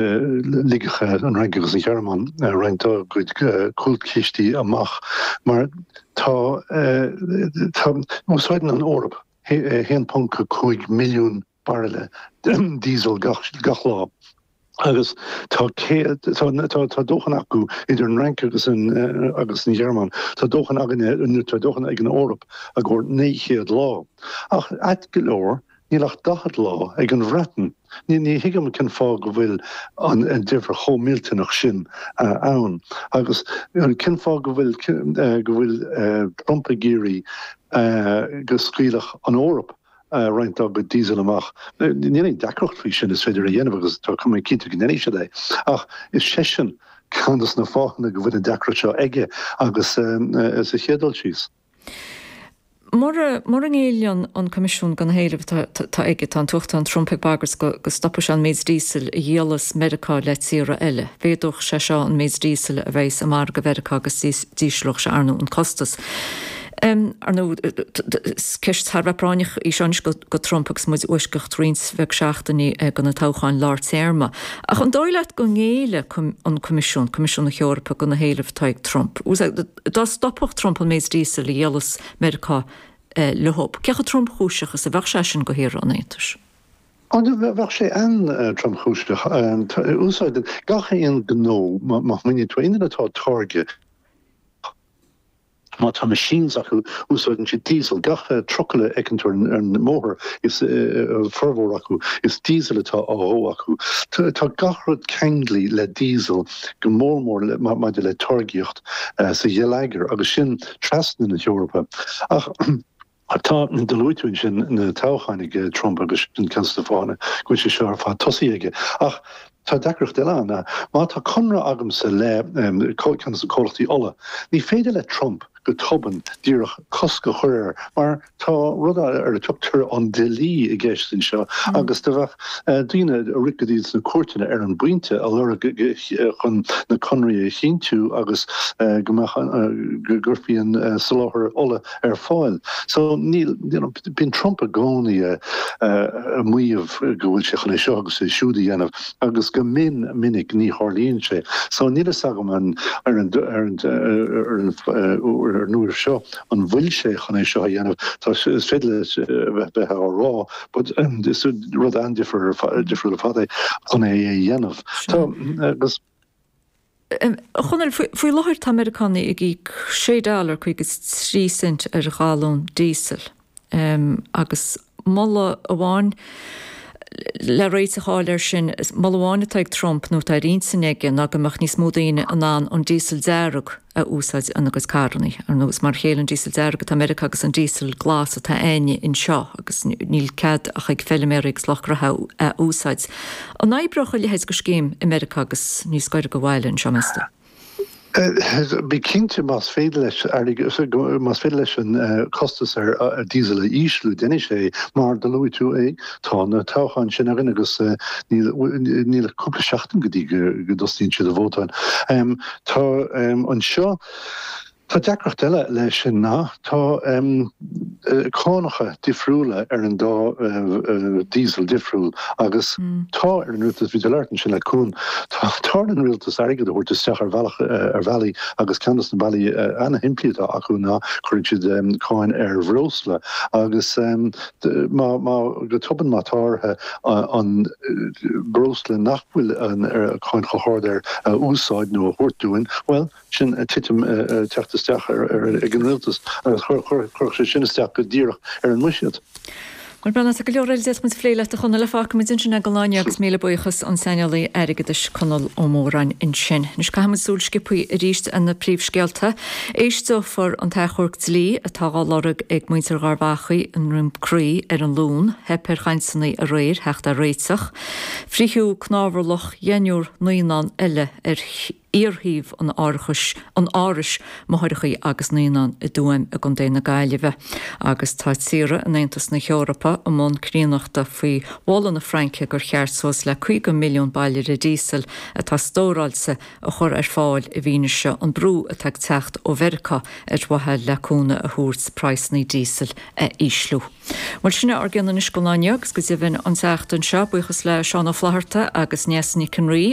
Ligfeadh an Fhrainc agus an Ghearmáin roinnt dá gcuid cúlchistí amach mar tá úsáideann an Eoraip 1.5 milliún bairille diesel gach lá agus tá dóthain acu idir an Fhrainc agus an Ghearmáin, tá dóthain againne nó tá dóthain ag an Eoraip i gcomhair 900 lá. Ach ait go leor, Níl ach 40 lá ag an Bhreatain. Ní thuigim cén fáth go bhfuil an deifir chomh millteanach sin ann agus cén fáth go bhfuil Trump ag iarraidh go scaoilfeadh an Eoraip roinnt dá gcuid Diesel amach. Níl aon deacracht faoi sin, is féidir é a dhéanamh agus tá mé cinnte go ndéanfaidh siad é. Ach is seisean ceann de na fáthanna go bhfuil an deacracht seo againn sa chéad dul síos. Mura, mura ngéilleann an Coimisiún do na héilimh atá, atá aige, tá an tUachtarán Trump ag bagairt go, go stopfaidh sé an méid díosail a dhíolas Meiriceá le tíortha eile. Mhéadódh sé seo an méid díosail a bheadh sa mhargadh Mheiriceá agus d'íos, d'ísleodh sé, ar ndú, an costas. Ar ndú, is ceist thar a bheith práinneach í seo anois go, go Trump agus muid i bhfoisceacht roinnt bheag seachtainí go na toghcháin lár téarma. Ach an dóigh leat go ngéillfidh an Coimisiún, Coimisiún na hEorpa go na héilimh atá ag Trump? Dá stopfadh Trump an méid díosail a dhíolas Meiriceá leo, cé chomh tromchúiseach is a bheadh sé sin do shaoránaigh an Aontais? Ó, bheadh sé an-tromchúiseach. Úsáideann gach aon ghnó, má smaoiníonn tú aon rud atá á táirgeadh, má tá machines acu, úsáideann siad diesel. Gach trucail a fheiceann tú ar an mbóthar, an formhór acu, is diesel atá á dhó acu. Tá gach rud ceanglaithe le diesel, go mór mór maidir le táirgíocht. sa gheilleagar agus sin trasna na hEorpa. Ach tá, do luaigh tú ansin na toghcháin ag Trump agus sin ceann de na fáthanna go bhfuil sé seo ar fad tosaithe aige. Ach tá deacracht eile ann. Má tá conradh agamsa le ceann de na comhlachtaí ola, ní féidir le Trump go tobann díreach cosc a chur air mar, Tá rud eile ar a dtugtar an Dlí i gceist anseo agus do bheadh daoine ag rith go dtí sna cúirteanna ar an bpointe ag lorg chun na conraí a chinntiú agus go mbeadh go gcuirfí an soláthar ola ar fáil. So níl, you know, bíonn Trump i gcónaí ag maíomh go bhfuil sé chun é seo agus é siúd a dhéanamh agus go mion minic ní tharlaíonn sé. So níl a fhios agam an, ar an, ar an, ar an, ar an uair seo. an bhfuil sé chun é seo a dhéanamh. Tá, is féidir leis a bheith á rá but is rud an-difriúil ar fad é chun é a dhéanamh. Tá, agus. A Chonaill, faoi láthair tá Meiriceánaigh ag íoc sé dollar cúig is tríocha cent ar ghalún díosail agus. moladh amháin le réiteach a fháil air sin, moladh amháin atá ag Trump nó atá ar intinn aige ná go mbeadh níos mó daoine in ann an díosal dearg a úsáid ina gcuid carrannaí. Ar nós mar a chéile an díosal dearg atá i Meiriceá agus an díosal glas atá againn anseo agus níl cead ach ag feilméaraí agus lucht farraige é a úsáid. An oibreodh a leithéid de scéim i Meiriceá agus níos gaire do bhaile anseo meas tú? Bí cinnte más féidir leis más féidir leis an costas ar diesel a ísliú déanfaidh sé é. Mar do luaigh tú é tá na toghcháin sin againn agus níl ach cúpla seachtain go dtí go dtosnaíonn siad ag vótáil. Tá anseo, Tá deacracht eile leis sin ná tá cánacha difriúla ar an dá Diesel difriúil agus tá ar an Rialtas, bhí tú ag labhairt ansin le Cuan, tá ar an Rialtas airgead a thabhairt isteach ar bhealach, ar bhealaí agus ceann dos na bealaí ana-shimplí atá acu ná cuireann siad cáin ar bhreosla agus má, má, go tobann má tá orthu an breosla nach bhfuil an cáin chomh hard air a úsáid nó a thabhairt dúinn, bhuel, sin ag titim, ag teacht isteach ag an Rialtas agus chuirfeadh sé sin isteach go díreach ar an mbuiséad. Muise tá go leor eile a d'fhéadfaimis a phlé leat a Chonaill ach fágfaimid ansin é go lá eile agus míle buíochas an saineolaí airgeadais Conall Ó Móráin ansin. Anois caithfimid súil sciopthaí arís ar na príomhscéalta. Éisteofar an t-achomharc dlí atá á lorg ag muintir Gharbhachaidh i nDroim Crí ar an Luan. Theip ar chainteanna aréir a theacht ar réiteach. Fritheadh cnámharlaigh dheichniúr naíonán eile ar. iarshuíomh an, an Árais Máithreacha agus Naíonán i dTuaim i gContae na Gaillimhe, agus tá tíortha in Aontas na hEorpa i mbun cruinnithe faoi mholadh na Fraince gur cheart suas le 50 milliún bairille díosail atá stóráilte a chur ar fáil i bhfianaise an bhrú atá ag teacht ó Mheiriceá ar mhaithe le cúnamh a thabhairt praghsanna díosail a ísliú. Bhuel, sin é ár gcuid don chlár inniu agus go deimhin an tseachtain seo. Buíochas le Seán Ó Flaithearta agus Neasa Nic an Rí.